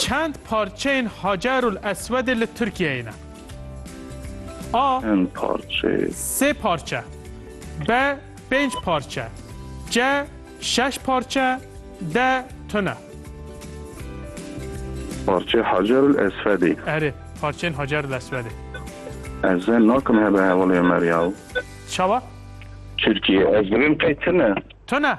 Çend parçeyên Hacerul Eswedê li Tirkiyeyê ne? A. Çend parçe? Sê parçe. B. Pênc parçe. C. Şeş parçe. D. Tune. Parçe Hacerul Eswedê. Erê, parçeyên Hacerul Eswedê. Ez ê nakim hebe hevalê Ömer ya. Çawa? Türkiye. Ez dilim qey tune. Tune.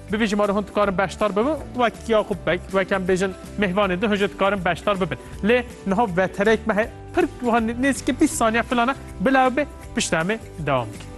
Bi vî jimarê hûn dikarin beşdar bibin wek ya xwe bek wek em bêjin mêvanê di hûn jî dikarin beşdar bibin. Lê niha vetereyek me heye pir wiha nêzîkî bîst saniye filan e bila ew bê piştre em ê dewam bikin.